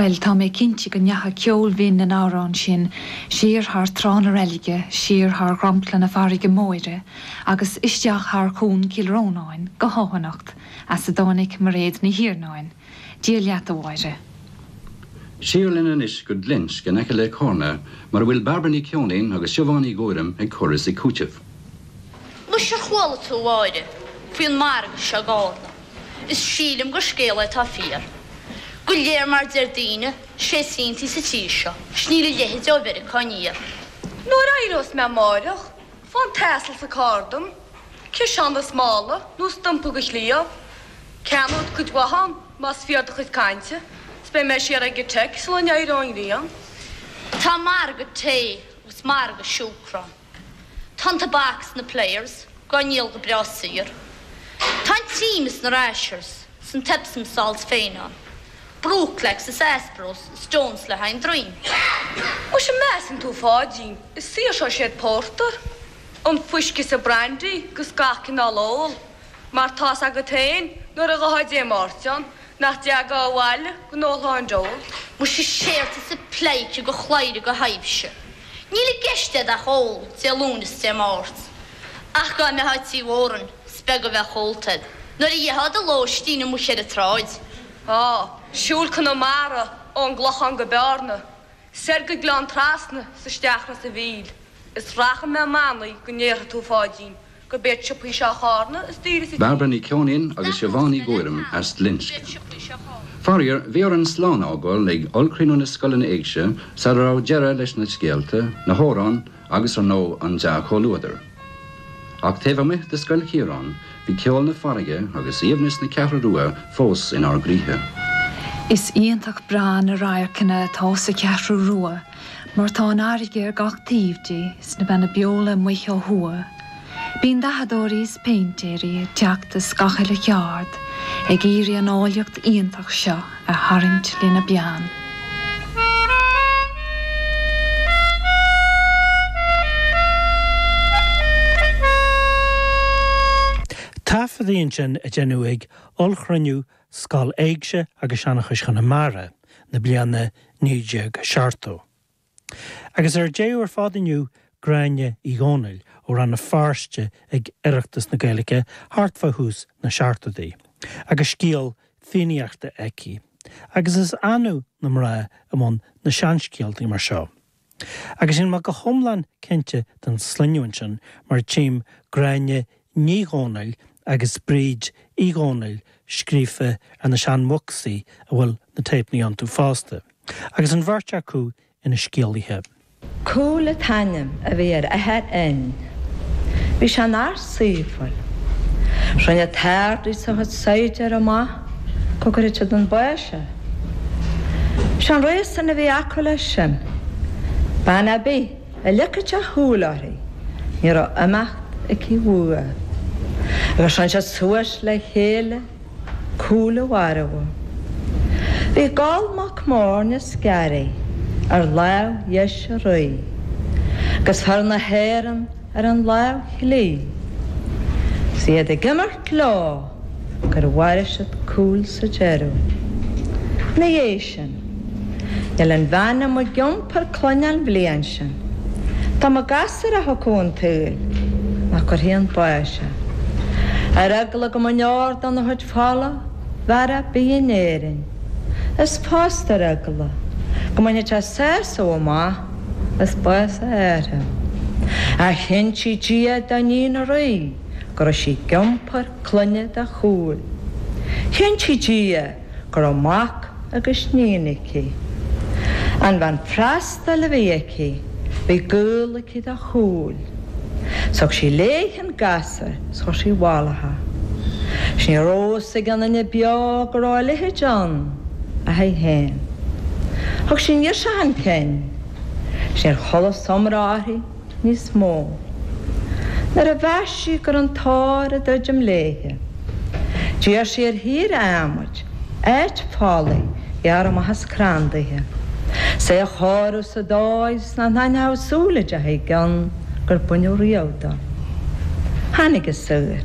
Bhuel, tá mé cinnte go ndeacha ceol binn na n-amhrán sin siar thar trá na reilige, siar thar dhromchla na farraige móire, agus isteach thar chuan Chill Rónáin go hEoghanacht, as a dtáinig Mairéad Ní Iarnáin. Dia leat, a Mhairéad. Siar linn anois go Glinsce in aice le Carna mar a bhfuil Bairbre Ní Cheoinín agus Siobhán Ní Ghuairim ag cur is ag cúiteamh. Anois ar chuala tú, a Mháire, faoin margadh seo i gCárna? is sílim gur scéala atá fíor go léir mar deir daoine sé is iontaí sa tír seo is níl a leithide ó Mheiriceá aniar. Nuair a éireós mé amáireach fáigh an t-asal sa carr dom ciseán is mála nó is timpeall an chliabh Ceannód cuid mhaith ann más fíor do chuid cainte is beidh mé siar ag an teach sula n-éireoidh an ghrian. Tá margadh tae agus margadh siúcra ann. Tá an tobac sna Players dhá ndíol go breá saor. Tá an cream is na Rashers 's an t-Epsom salts féin ann. Brooklax is Aspros is Sloan's le haghaidh an droim. Muise an measann tú Pháidín is saor seo é an pórtar, an fuisce is an brandy 'gus gach cineál ól, mar tá's agat féin nuair a ghabhfá Dé Máirt ann, Nach dtiocfá abhaile gan do lán d'ól. Muise stop thusa a phleidhce de chlaidhre de thaibhse. Níl i gceist agat ach ól Dé Luain is Dé Máirt. Ach dhá mbeifeá tigh Mhóráin, 's beag a bheadh ólta a'd, nuair a d'fheicfeá do lóistín amuich ar a' tsráid. Á, siúl Conamara ó'n gClochán go Beárna, soir go Gleann Trasna 's isteach Ros a' Mhíl, is rachaidh mé i mbannaí go ndéarfaidh tú Pháidín. gurb iad siopaí Shráid Chárna is daoire sa tír. Bairbre Ní Cheoinín agus Siobhán Ní Ghuairim as Glinsce. Faraor, bhí orainn slán a fhágáil ag Ollchruinniú na Scoileanna Éigse sara raibh deireadh leis na scéalta, na hamhráin agus ar ndóigh an dea-chomhluadar. Ach taobh amuigh de Scoil Chiaráin, bhí ceol na farraige agus aoibhneas na Ceathrú Rua fós inár gcroíthe. Is iontach breá na radharcanna atá sa Cheathrú Rua. mar tá an fhairrge ar gach taobh di sna beanna beola amuich ó thuaidh. Bíonn dathadóirí is péintéirí ag teacht as gach uile cheárd ag iarraidh an áilleacht iontach seo a tharraingt lena bpeann. Taifeadadh ansin a deineadh ag ollchruinniú Scoil Éigse agus Seanchais Chonamara na bliana 1970. Agus ar deireadh ar fad inniu Gráinne Uí Dhónaill ó Rann na Feirste ag Oireachtas na Gaeilge thart fá thús na seachtoidí agus scéal Fiannaíochta aici agus is annamh na mná i mbun na seanscéaltaí mar seo. Agus níl mé go hiomlán cinnte den sloinneadh sin mar tchím Gráinne Ní Dhomhnaill agus Bríd Uí Dhomhnaill scríofa ar na sean bhocsaí a bhfuil na téipeanna iontu fosta, agus an bheirt acu ina scéalaithe. Cumhall an t-ainm a bhí ar athair Fhinn. Bhí sé ina fhear scéimhiúil. Rinne an tArd-Rí is a chuid saighdiúr amach go gcuirfeadh siad chun báis é. Sé an réasún a bhí acu leis sin, bean a' bith a leagfadh sé a shúil uirthi ní raibh imeacht aici uaidh. Agus rinne siad suas le chéile Cumhall a mharbhadh. Bhí Goll mac Morna is Garraí ar láimh dheis a' Rí, agus fir na hÉireann, ar an láimh chlí. Is iad ag imirt leo gur mharaigh siad Cumhall sa deireadh. Ina dhiaidh sin, níl aon bhean a mbeadh ag iompar clainne an bhliain sin, dá mba gasúr a thiocfadh chun an tsaoil nach gcuirfí chun báis é. Ar eagla go mbeadh aon deor dena chuid fola i bhfear ar bith in Éirinn. Is fosta ar eagla go mbainfeadh sé sásamh amach. as bás a athara. Chinntigh Dia do níon an rí go raibh sí ag iompar clainne do Chumhall. Chinntigh Dia go raibh mac agus níon aici. An bhean freastail a bhí aici bhí gaol aici do Chumhall. Thug sí léi an. Is chuir sí i bhfolach é. Ní raibh fhios ag aon duine beo go raibh a leithéid ann ach aici féin. Thug sí an ghirseach chun cinn. Níor chualathas iomrá uirthi níos mó. Nuair a mheas sí go raibh an tóir a druidim léithe, d'iarr sí ar shaor adhmaid, áit folaigh a ghearradh amach as crann daoithe, is é a chóiriú sa dóigh is nach n-aithneochadh súil dá deachaidh i gcionn. gur baineadh riamh dó. Tháinig an saor.